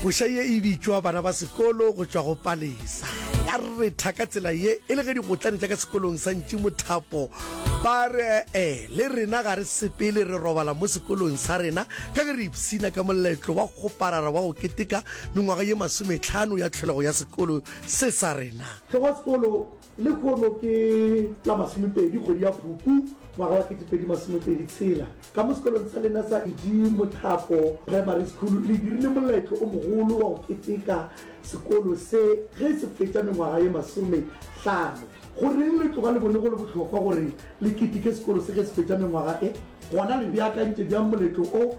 Koša ye e bitšwa bana ba sekolo go tšwa go Palesa. Ba retha ka tsela ye e le ge digotlane tša ka sekolong sa Ntši Mothapo ba re e le rena ga re sepele re robala mo sekolong sa rena ka ge re ipsina ka moletlo wa kgoparara wa go keteka mengwaga ye masometlhano ya tlholego ya sekolo se sa rena. Tlhogosekolo Lehono ke la masomepedi kgwedi ya Phupu ngwaga wa ketepedi masomepedi tshela, ka mo sekolong sa lena sa Edi Mothapo Primary School le dirile moletlo o mogolo wa go keteka sekolo se ge se fetša mengwaga ye masome hlano. Goreng le tloga le bone go le bohlokwa gore le keteke sekolo se ge se fetša mengwaga e? Gona le beakantše bjang moletlo o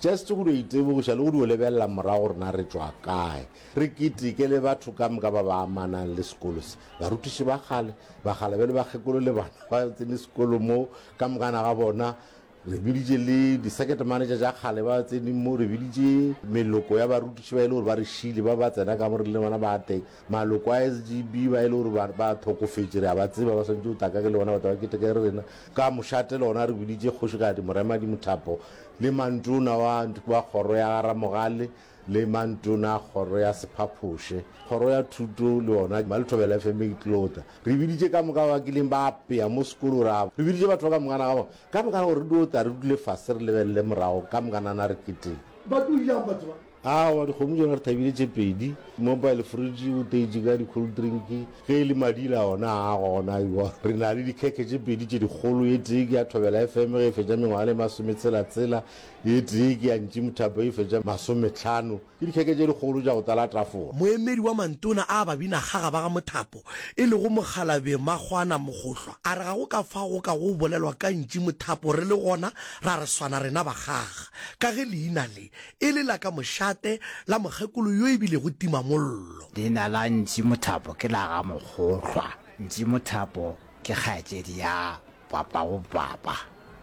Just go dio itebogiša le go dio lebelela morago gore na re tšwa kae. Re keteke le batho ka moka ba ba amanang le sekolo se. Barutiši ba kgale, bagala bjale bakgekolo le bana ba tsene sekolo mo ka mokana ga bona. Re biditše le di-circuit manager tša kgale ba tsene mo. Re biditše meloko ya barutiši ba e le gore ba re šiile ba ba tsena ka mo re le bona ba teng. Maloko a SGB ba e le gore ba ba thokofetše re a ba tseba ba swanetše go tla ka ke le bona batho ba keteke le rena. Ka mošate le gona re biditše Kgošigadi Moremadi Mothapo le Mantona wa wa Kgoro ya ga Ramogale le Mantona a Kgoro ya Sephaphoše, Kgoro ya Thuto le yona ba le thobela FM e tlota. Re biditše ka moka ba kileng ba apea mo sekolo ra re biditše batho ba ka mokana ga bona ka mokana gore re dio tla re dule fase re lebelele morago ka mokanana re keteke. Ba tlo yang batho ba? Aowa, dikgomo tšona re thabile tše pedi. Mobile fridge o teitše ka di-cold drink, ge e le madila ona a gona ewa. Re na le dikhekhe tše pedi tše dikgolo, e tee ke ya Thobela FM ge e fetša mengwaga le masome tshela tshela, e tee ke ya Ntši Mothapo e fetša masome tlhano. Ke dikhekhe tše dikgolo tša go tlala tafola. Moemedi wa mantona a babinakgaga ba ga Mothapo e lego Mokgalabje Makgwana Mogohlwa a re ga go ka fao go kago go bolelwa ka Ntši Mothapo re le gona ra re swana rena bakgaga ka ge leina le e le la ka mošate la mokgekolo yo e bilego timamollo. Leina la Ntši Mothapo ke la ga Mokgohlwa. Ntši Mothapo ke kgaetšedi ya Papagobapa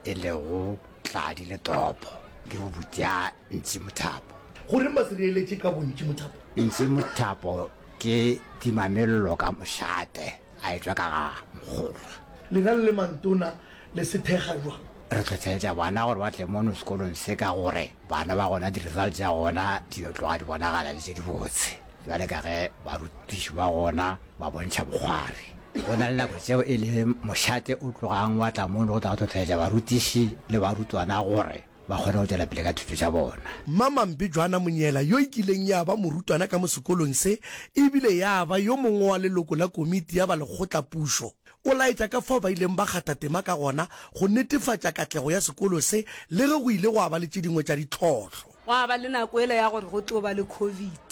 e lego Tladi le Topo, ke bobuti ya Ntši Mothapo. Goreng ba se reeletše ka bo Ntši Mothapo? Ntši Mothapo ke timamello ka mošate. A etšwa ka ga mokgolwa. Lena le le mantona le se thekga bjang? Re hlohleletša bana gore ba tle mono sekolong se ka gore bana ba gona di-results tša gona di yo tloga di bonagala e le tše dibotse bjale ka ge barutiši ba gona ba bontšha bokgwari. Go na le nako tšeo e le mošate o tlogang wa tla mono go tla go hlohleletša barutiši le barutwana gore ba kgone go tšwela pele ka thuto tša bona. Mmamamphe Joana Monyela yo e kileng ya ba morutwana ka mo sekolong se e bile ya ba yo mongwe wa leloko la komiti ya ba lekgotlapušo o laetša ka fao ba ileng ba kgatha tema ka gona go netefatša katlego ya sekolo se le ge go ile gwa ba le tše dingwe tša ditlhohlo. Gwa ba le nako yela ya gore go tlo ba le Covid.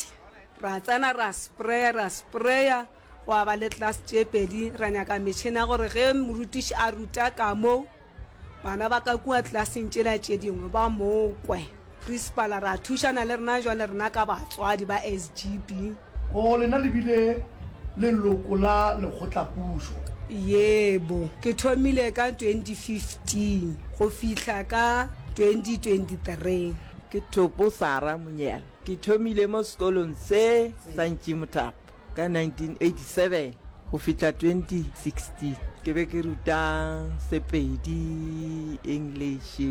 Ra tsena ra spraya, ra spraya. Gwa ba le class tše pedi, ra nyaka metšhene ya gore ge morutiši a ruta ka moo, bana ba ka kua classeng tšela tše dingwe ba mo kwe. Principal ra thušana le rena jwale rena ka batswadi ba SGB. O lena le bile leloko la lekgotlapušo? Yebo, ke thomile ka 2015 go fihla ka 2023. Ke Thopo Sarah Munyela, ke thomile mo sekolong se sa Ntšimuthapo. Ka 1987 go fihla 2016 ke be ke ruta Sepedi, English,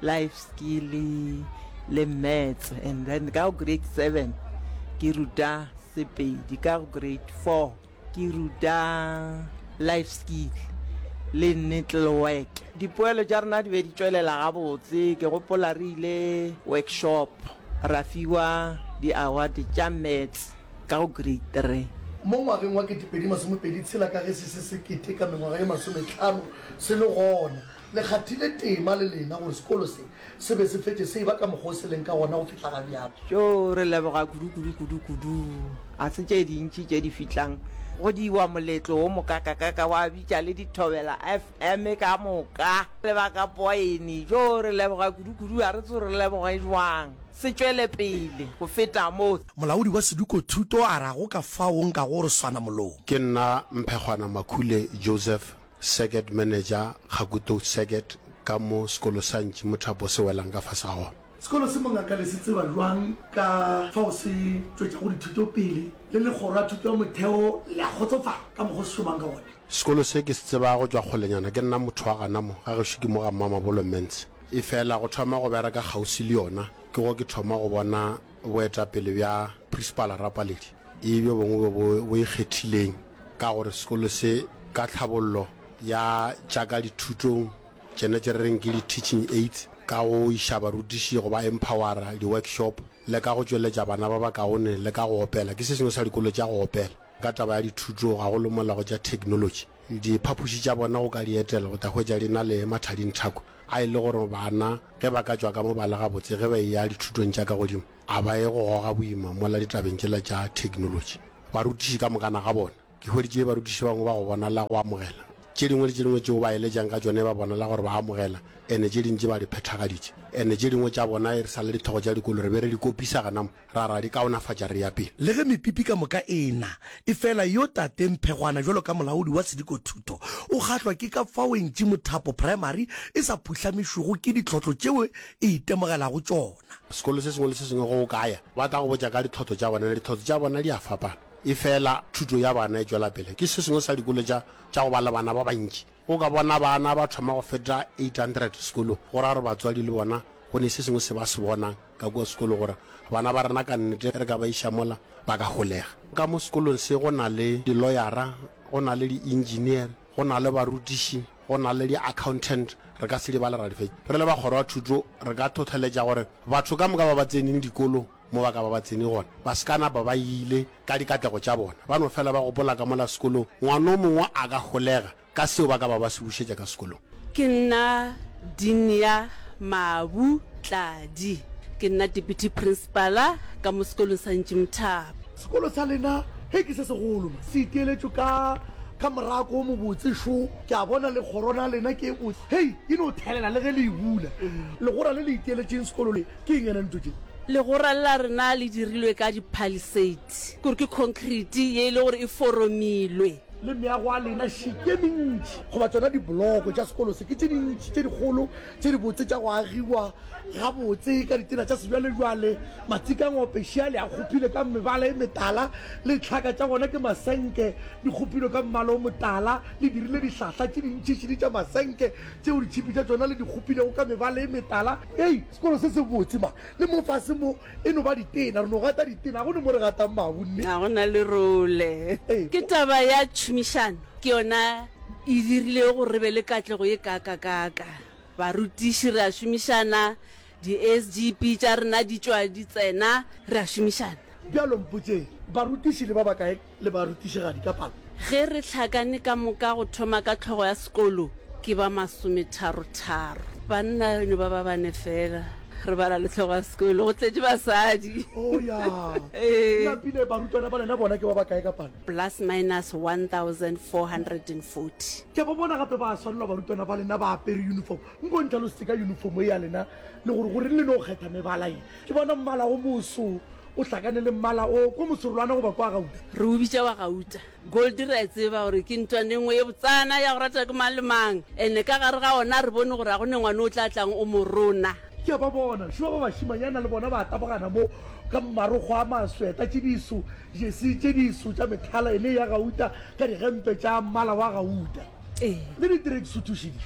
life skill le maths and then ka grade 7 ke ruta Sepedi ka grade 4 ke ruta life skill le nettle work dipoelo tša rena di be di tšwelela gabotse ke gopola re ile workshop Ra fiwa di-award tša Maths ka go Grade Three. Mo ngwageng wa ketepedi masomepedi tshela ka ge se se sekete ka mengwaga ye masometlhano se le gona, le kgathile tema le lena gore sekolo se se be se fetše se eba ka mokgwa o se leng ka gona go fihla ga bjalo. Tšo re leboga kudu kudu kudu kudu. Ga se tše dintši tše di fihlang go diwa moletlo wo mokakakaka wa bitša le dithobela. Af Eme ka moka, le ba ka poaene. Jo, re leboga kudukudu, a re tso re leboge jwang. Se tšwele pele go feta mo. Molaodi wa Sedukothuto a re a go ka fao o nkago gore swana molong. Ke nna Mphegwana Makhule Joseph, Circuit Manager, Kgakutou Circuit, ka mo sekolo sa Ntši Mothapo se welang ka fase ga gona. Sekolo se mongaka le se tseba bjang ka fao se tšwetšago dithuto pele, le Legoro la Thuto ya Motheo le a kgotsofala ka mokgwa o se šomang ka wona? Sekolo se ke se tseba go tšwa kgolenyana ke nna motho wa gana mo, ga gešo ke mo ga Mmamabolo Mance. Efela go thoma go bereka kgaufsi le yona ke go ke thoma go bona boetapele bja Prisipala Rapaledi e bjo bongwe bjo bo bo ikgethileng ka gore sekolo se ka tlhabollo ya tša ka dithutong Tšena tše re reng ke di-teaching aids, ka go iša barutiši go ba empowera, di-workshop, le ka go tšweletša bana ba bakaone le ka go opela, ke se sengwe sa dikolo tša go opela. Ka taba ya dithuto, gagolo mola go tša theknolotši, diphapoši tša bona go ka di etela o tla hwetša di na le mathadinthako a e le gore bana ge ba ka tšwa ka mo ba le gabotse ge ba eya dithutong tša ka godimo a ba ye go goga boima mola ditabeng tšela tša theknolotši. Barutiši ka mokana ga bona. Ke hweditše barutiši bangwe ba go bonala go amogela tše dingwe le tše dingwe tšeo ba eletšang ka tšone, ba bonala gore ba amogela, ene tše dintši ba di phethagaditše. Ene tše dingwe tša bona e re sa le dithogo tša dikolo re be re di kopisa gana mo, ra ra di kaonafatša re ya pele. Le ge mepipi ka moka e e-na, efela yo Tate Mphegwana bjalo ka molaodi wa sedikothuto o kgahlwa ke ka fao Entši Mothapo Primary e sa phuhlamišwego ke ditlhohlo tšeo e itemogelago tšona. Sekolo se sengwe le se sengwe ge o ka ya, ba tla go botša ka ditlhohlo tša bona, ditlhohlo tša bona di a fapana. Efela thuto ya bana e tšwela pele. Ke se sengwe sa dikolo tša tša go ba le bana ba bantši. O ka bona bana ba thoma go feta 800 sekolong. Go ra gore batswadi le bona go ne se sengwe se ba se bonang ka kua sekolong gore bana ba rena ka nnete re ka ba iša mola ba ka holega. Ka mo sekolong se go na le diloyara, go na le di-engineer, go na le barutiši, go na le di-accountant, re ka se di bale ra di fetša. Re le ba Kgoro ya Thuto re ka thotheletša gore batho ka moka ba ba tseneng dikolo, Mo ba ka ba ba tsene gona, ba se ka napa ba ile ka dikatlego tša bona, ba no fela ba gopola ka mola sekolong. Ngwana o mongwe a ka holega ka seo ba ka ba ba se bušetša ka sekolong. Ke nna Dinia Mabu Tladi. Ke nna Deputy Principala ka mo sekolong sa Ntši Mthaba. Sekolo sa lena he ke se segolo ma, se iteeletšwe ka ka morako o mobotse šo. Ke a bona le kgorona ya lena ke e botse. Hei, e no thelela le ge le e bula. Legora le le iteeletšeng sekolo le, Ke eng yena ntlo tše? Legora la rena le dirilwe ka diphaliseiti, kore ke khonkriti ye e le gore e foromilwe. Le meago ya lena šite e mentši goba tsona diboloko tša sekolo se ke tše dintši tše dikgolo tše dibotse tša go agiwa gabotse ka ditena tša sebjalebjale. Matsika a ngwapešeale a kgopile ka mebala e metala, le ditlhaka tša gona ke masenke, di kgopilwe ka mmala o motala, le dirile dihlahla tše dintšhišidi tša masenke tšeo di tšhipi tša tšona le di kgopilego ka mebala e metala. Hei, sekolo se se botse ma! Le mo fase mo e no ba ditena, re no gata ditena, ga go ne mo re gatang mabu, nne? Ga go na le role. Ke taba ya tšhomišano, ke yona e dirilego gore re be le katlego ye kaakakaaka. Barutiši re a šomišana, di-SGB tša rena di tšwa di tsena, re a šomišana. Bjalo mpotšeng, barutiši le ba bakae le barutišigadi ka palo. Ge re hlakane ka moka go thoma ka tlhogo ya sekolo, ke ba masometharo-tharo. Banna re no ba ba bane fela. Re bala le tlhogo ya sekolo go tletše basadi. Oh, ya. Ee. Lapile, barutwana ba lena bona ke ba bakae ka palo? Plus minus 1440. Ke a ba bona gape ba swanelwa barutwana ba lena ba apere yunifomo. Nko ntlhalosetse ka yunifomo e ya lena le gore goreng le no kgetha mebala ye. Ke bona mmala o moso O hlakane le mmala o ko moserolwana goba kwa gauta. Re o bitša wa gauta. Goldie re a e tseba gore ke ntwani e nngwe ye botsana ya go ratwa ke mang le mang. Ene ka gare ga ona a re bone gore a go ne ngwane o tla tlang o mo rona. Ke a ba bona šo ba bašimanyana le bona ba tabogana mo ka marokgo a masweta, tše diso, jersey tše diso tša mehlala, ene e ya gauta ka digempe tša mmala wa gauta. le diterekisuthušidi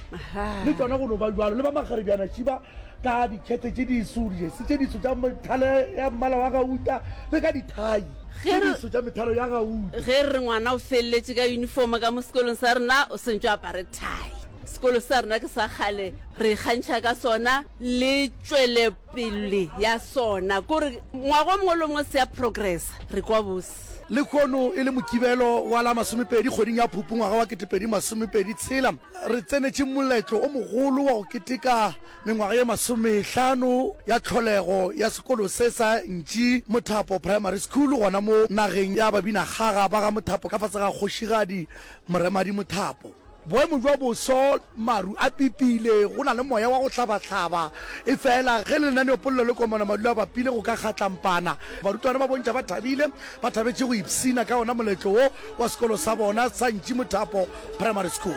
le tsona go no ba jalo le ba magarebjana šiba ka dikgethe tše diso dijesi tše diso tša methalo ya mmala wa gauta le ka dithai tše diso tša methalo ya gauta ge re ngwana o feleletše ka uniform ka mo sekolong sa rena o sentšo apare thai sekolo sa rena ke sa kgale re ikgantšha ka sona le tšwelepele ya sona kore ngwago mongwe le mongwe se ya progressa re kwa bose States. Lekhono e le Mokibelo wa la masomepedi kgweding ya Phupu ngwaga wa ketepedi masomepedi tshela, re tsenetše moletlo o mogolo wa go keteka mengwaga ye masomehlano ya tlholego ya sekolo se sa ntši Mothapo Primary School gona mo nageng ya babinakgaga ba ga Mothapo ka fase ga Kgošigadi Moremadi Mothapo. Boemo bja boso, Maru a pipile, go na le moya wa go hlabahlaba. Efela ge lenaneopolelo le komana madu a bapile go ka kgatlampana. Barutwana ba bontšha ba thabile, ba thabetše go ipshina ka wona moletlo wo wa sekolo sa bona sa Ntšimothapo Primary School.